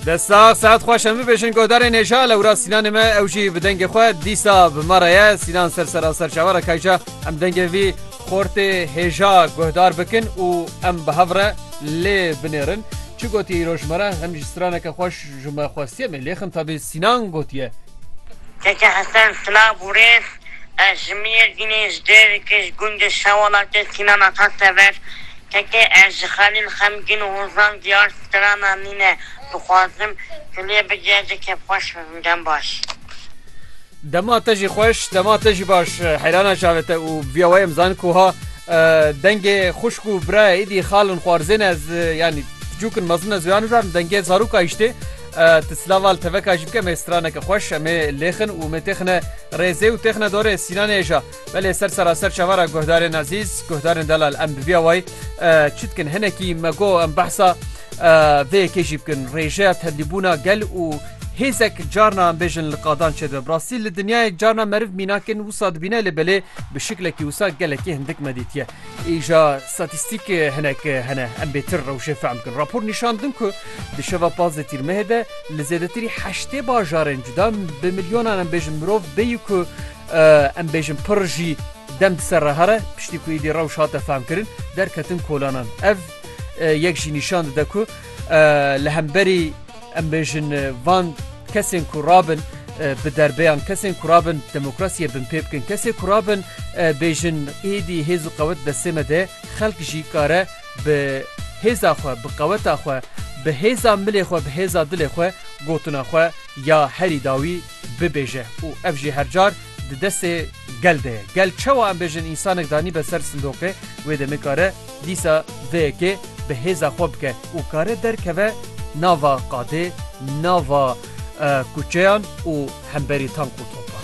Destax saet xweş em bibêjin godarên hêja lewra sînanê me ew jî bi dengê xwe dîsa bi me re ye sînan ser sera ser çavara kayca em dengê vî xortê hêja guhdar bikin û em bi hev re lê binêrin çi gotiye îro ji me re hem jî straneke xweş ji me xwestiye me lêxin tadî sînan gotiye Keke Hesen silav û rêz. Ez ji Mêrdînê, ji Dêrikê, ji gundê Şewalatê Sînan Ata tever. Kekê ez ji Xelîl xemgîn û hozan diyar strana nîn e. Dixwazim tu lê bigê ez ê kêfxweş bibim. Dem baş. Dema te jî xweş, dema te jî baş. Heyrana çavê te û vîya wayem zanîn ku ha dengê xwişk û birayê êdî xalin xwarzên e ez yanî piçûk in mezin ez wêya nizanim dengê zarok a îştê. Ti silav al teveka jî bike me straneke xweş em ê lêxin û mê têxine Rêzê û têxine dorê Sînanê êja. Belê ser seraser çavara guhdarên ezîz, guhdarên delal em bi vîya wayî çi dikin hinekî me got em behsa vê yekê jî bikin. Rêjeya tevlîbûna gel û hêzek carna em bêjin li qadan çêdibe. Bi rastî li dinyayê carna meriv mînak in wisa dibîne lê belê bi şiklekî wisa gelekî hindik me dîtiye. Îja statîstîk hinek hene em bêtir rewşê fehm bikin. Rapor nîşan din ku di şeva pazdeh tîrmehê de li zêdetirî heştê bajarên cuda bi milyonan em bêjin mirov bêyî ku em bêjin pir jî dem di ser re here piştî ku êdî rewş hate fehmkirin derketin kolanan. Ev yek jî nîşan dide ku li hemberî Em bêjin van kesên ku rabin bi derbeyan, kesên ku rabin demokrasiyê binpê bikin, kesê ku rabin bêjin êdî hêz û qewet destê me de xelk jî kare bi hêza xwe, bi qeweta xwe, bi hêza milê xwe, bi hêza dilê xwe gotina xwe ya herî dawî bibêje û ev jî her car di destê gel de ye. Gel çewa em bêjin însanek danîbe ser sindoqê wê de nikare dîsa vê yekê bi hêza xwe bike û kare derkeve nava qadê, nava kuçeyan û hemberî tank û topan.